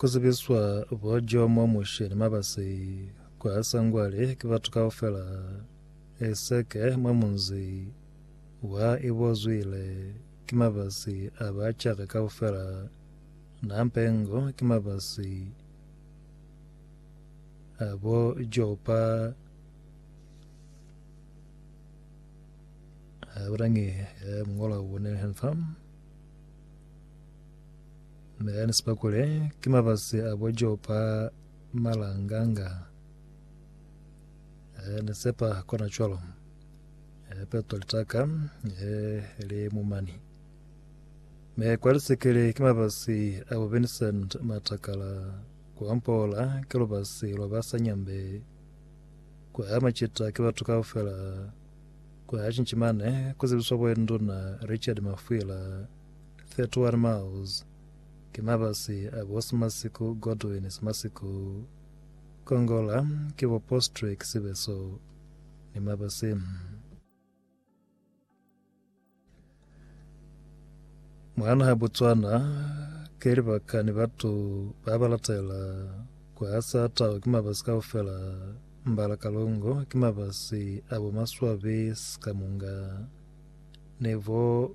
ku zibiswa bo Jomo, Mushe ni Mabasi kwa Sangwali ki batu kaufela eseke mwa munzi wa Ibozwile ki Mabasi a ba Chaka kaufela na Mpengo ki Mabasi a bo Jopa ha bulangi ya mungolwa wone. Na yani sipa kule ki mafasi a bo Jopa malanganga. Eh, ni sepa kona cwalo. Eh, peto litaka, eh, le mumani. Me kwa lisekele ki mafasi a bo Vincent matakala kwa mpola ke lubasi lwa ba sanyambe kwa ya machita ke batu kaufela kwa ya chinchimane kuzibiswa bwenduna Richard Mafwila 31 miles, ki mabasi a bo Simasiku Godwin Simasiku Kongola ki bo Postrek Sibeso ni mabasi. Mwa naha Botswana ki libaka ni batu ba ba latela ku hasa tau ki mabasi kaufela, Mbala Kalungu ki mabasi a bo Maswabi Sikamunga ni bo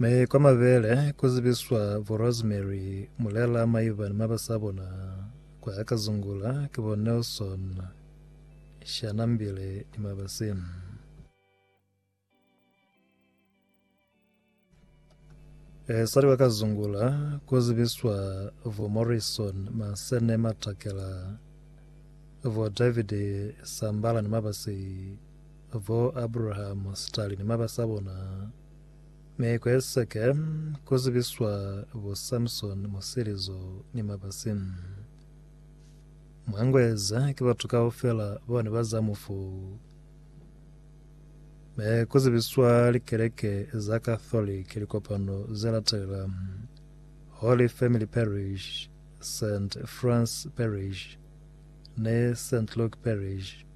Mi kwa mabele ku zibiswa bo Rosemary Mulela maiba ni maba sa bona kwa ka zungula ki bo Nelson Shanambile ni mabasi. Sali wa ka zungula ku zibiswa vo Morrison Masene Matakela, vo David Sambala ni mabasi, vo Abraham Stali ni mabasa bona, mi ku eseke ku zibiswa vo Samson Musilizo ni mabasi. Mwangu eza ki batu kaufela bone ba za mufu. Me ku zibiswa likeleke za Katholike likopano ze latela, Holy Family Parish, Saint Franc Parish, ni Saint Luke Parish.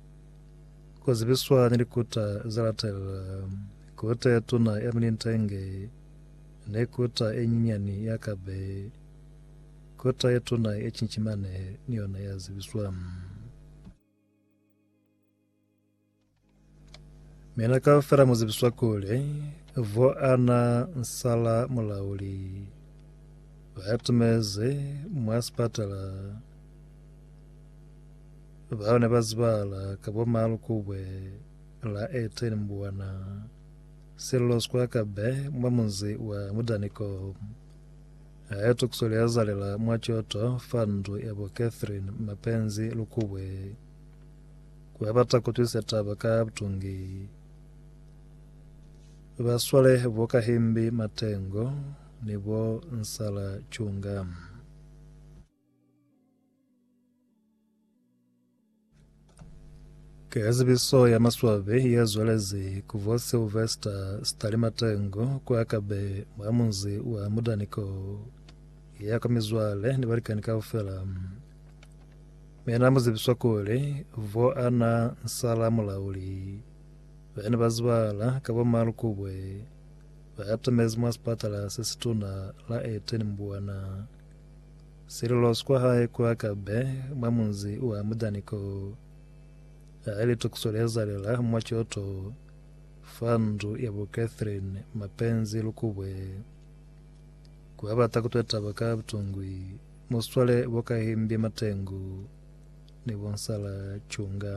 Ku zibiswa ni likuta ze latela, Kuta ye tuna ya Milintenge, ni kuta ye nyinyani ya Kabe. Kuta ye tuna ya Chinchimane ni yona ya zibiswa. Mina kaufela mu zibiswa kuli vo ana nsala mulauli batumezi mwa sipatala bao ne ba zibahala ka bo Malukubwe la 18 Mbuwana Sello Square Kabe mwa munzi wa Mudaniko hae tukuso li azalela mwa coto fa ndu ya bo Catherine Mapenzi Lukubwe Ku ba bata ku twisa taba ka butongi, ba swale bo Kahimbi Matengo ni bo Nsala Chunga. Ka zibiso ya maswabi ye zwelezi ku bo Sylvester Stali Matengo kwa Kabe mwa munzi wa Mudaniko, ya kwa mizwale ni balikani kaufela, Mi na muzibiswa kuli, vo ana nsala mulauli, bani ba zibala ka bo Malu Kubwe, ba atamezi mwa sipatala se situna la Eteni Mbuana. Sililosi kwa hae ku Akabe, mwa munzi wa Mudani ko. Hae litukiso li ezalela mwa Kyoto, fa ndu ya bo Catherine Mapenzi Lukubwe. Ku abata kutwe taba ka butungwi. Muswale bo Kahimbi Matengu ni bo Nsala Chunga.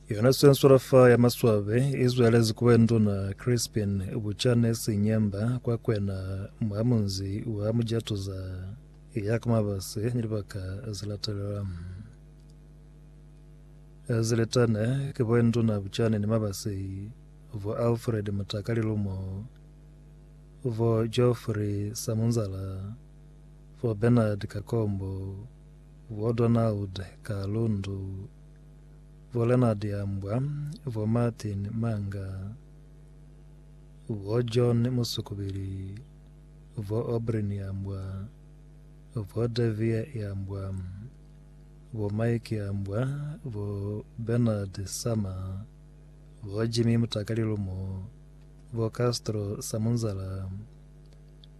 Yona swenswela fa ya maswabe izwelezi kuba nduna Crispin Buchane Sinyemba kwa kwena mwa munzi wa Mujatuza ya ka mabase ni libaka zilatelela. Ziletane ki boinduna Bujane ni Mabasi, bo Alfred Mutaka Lilumo, bo Geoffrey Samunzala, bo Bernard Kakombo, bo Donald Kalundu, bo Leonard Yambwa, bo Martin Manga, bo John Musukubili, bo Obryn Yambwa, bo Davie Yambwa. bo Mike Ambwa, bo Bernard Sama, bo Jimmy Mutakalilumo, bo Castro Samunzala,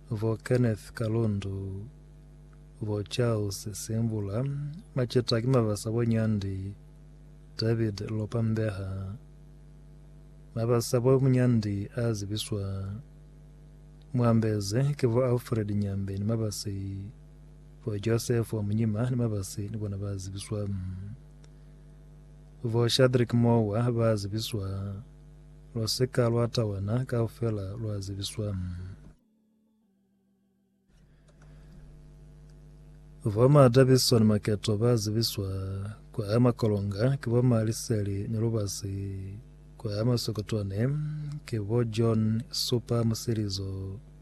bo Kenneth Kalundu, bo Charles Simbula, maceta ki mabasa bo Nyandi David Lopa Mbeha, mabasa bo Munyandi a zibiswa, Mwambezi, ki bo Alfred Nyambe ni mabasi. Bo Josefu wa munyima ni mabasi ni bona ba zibiswa. Bo Shadrik mowa ba zibiswa. Lwa sika lwa tawana kaufela lwa zibiswa. Bo ma Davidson maketo ba zibiswa kwa haya makolonga ke bo ma liseli ni lubasi kwa haya masokotwane ke bo John supa musilizo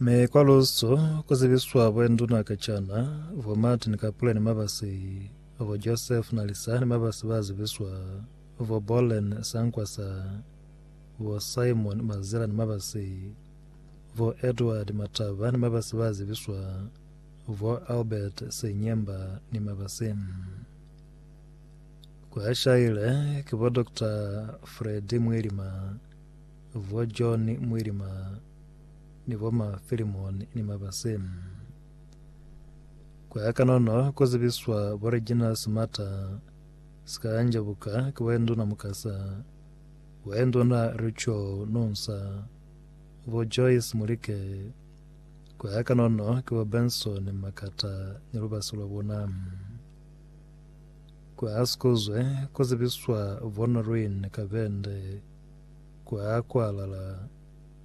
Mi kwa Lusu ku zibiswa bo nduna ka cana, bo Martin Kapule ni mabasi, bo Joseph Nalisa ni mabasi ba zibiswa, bo Bollen Sankwasa, bo Simon Mazila ni mabasi, bo Edward Mataba ni mabasi ba zibiswa, bo Albert Senyemba ni mabasi. Kwa shaile ki bo Dr. Freddy Mwilima, Bo John Mwilima ni bo ma Philemon ni Mabase. Ku ya kanono ku zibiswa bo Regina Smata Sikanja buka ki Boenduna Mukasa, Boenduna Richo Nunsa, bo Joyce Mulike, ku ya kanono ki bo Benson Makata ni lubasi lwa bona. Ku ya sikuzwe ku zibiswa bo Noreen Kabende, kwa kwalala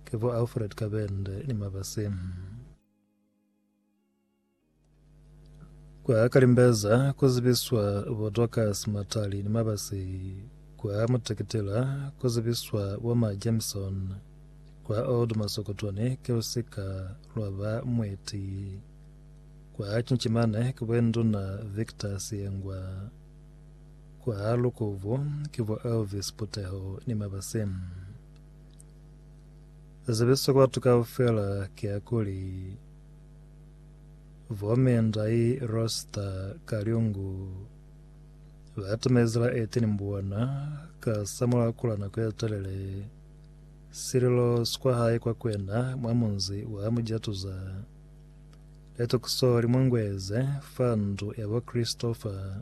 ki bo Alfred Kabende ni Mabasi. Kwa Kalimbeza ku zibiswa bo Dorcas Matali ni Mabasi, kwa Mutekitila ku zibiswa bo Ma Jameson, kwa Old Masokotwani ki lusika lwa ba Mweti, kwa Chinchimane ki Bwenduna Victor Siyengwa. Kwa lukubo ki bo Elvis Puteho ni Mabase. Zebiso kwa batu kaufela kiakuli, bo me ndai Rosta Kalyungu batamezi la 18 Mbuwana ka samulaho kula nako yetelele sililo sikwa hae kwa kwena mwa munzi wa Mujatuza. Litokiso limungueze fa ndu yabo Christopher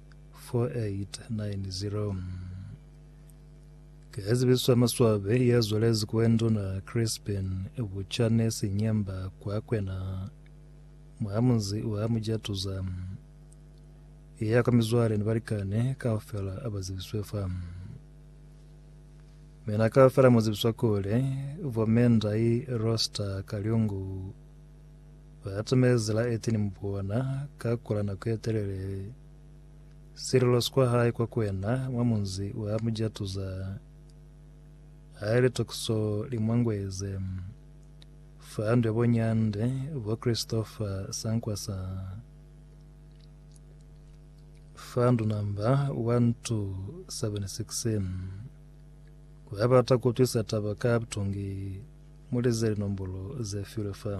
4890 Ki Ezibiso ya Maswabi ya zwalezi kwe Nduna Crispin Buchane Sinyemba kwa kwena mwa munzi wa Mujatuza. Iya kwa mizwale ni balikani kaufela aba zibiswe fa. Mina kaufela mu zibiswa kuli Bo Mendai Roster Kalyungu Ba atumezi la eteni mubona, ka kula nako ye telele sililo sikwa hae kwa kwena mwa munzi wa mujatuza. Haile tokiso li mwangweze fa ndwe bo Nyande, bo Christopher Sankwasa, fa ndunamba 1 to 76. Ku ya bata ku utwisa taba ka butungi, mu lize linombolo ze filwe fa.